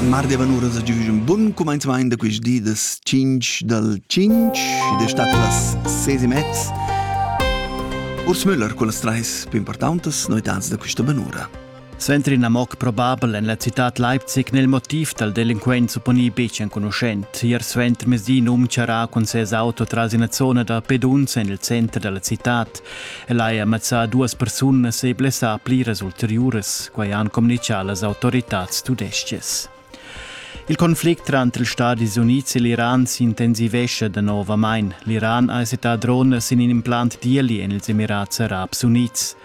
Mar devan uras a giuv un bun cumanzamaint da quist di das 5 dal 5 ed è stat las 6 e mezz. Urs Müller con las trais più importantes noitans da questa benura. Suenter in amok probabel en la cittad Leipzig nel motiv dal delinquent supponì betg enconuschent. Ier suenter mesdì num charà cun ses auto tras ina zona da peduns en il center da la cittad. El haja mazzà duas persunas e blessà pliras ulteriuras, quai han communitgà las autoritads tudestgas. Il conflict tranter ils Stadis Unids e l'Iran s'intensivescha danovamain. L'Iran ha settà dronas in in implant d'ieli en ils Emirats Arabs Unids.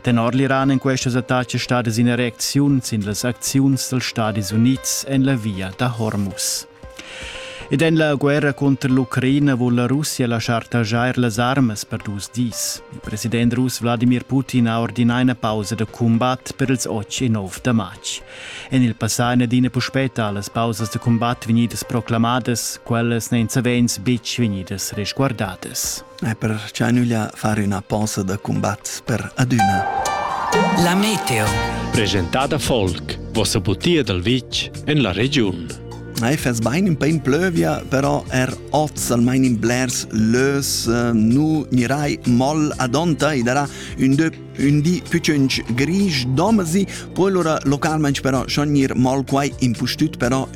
Tenor l'Iran en questas attacks stadas in ereziun sin las acziuns dals Stadis Unids en la via da Hormuz. Ed en la guerra cunter l'Ucraina vul la Russia laschar taxair las armas per dus dis. Il president russ Wladimir Putin ha ordinà ina pausa da cumbat per ils 8 e 9 da matg. En il passà è adina puspè talas pausas da cumbat vegnidas proclamadas, quellas n'èn savens betg vegnidas resguardadas. e per cha nüglia far üna posa da combatt per adüna. La meteo. Presentada Folk, vossa butia dal vitg en la regiun. Ei fes bein in pein plövia, però er oz almain in blers lös eh, nu mirai moll adonta i darà un dö un di pücönch grisch domasi, poi lura localment però schon ir moll quai impustüt però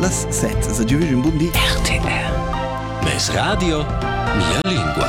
Las set ed adüvig ün bun di. RTR. Meis radio, mia lingua.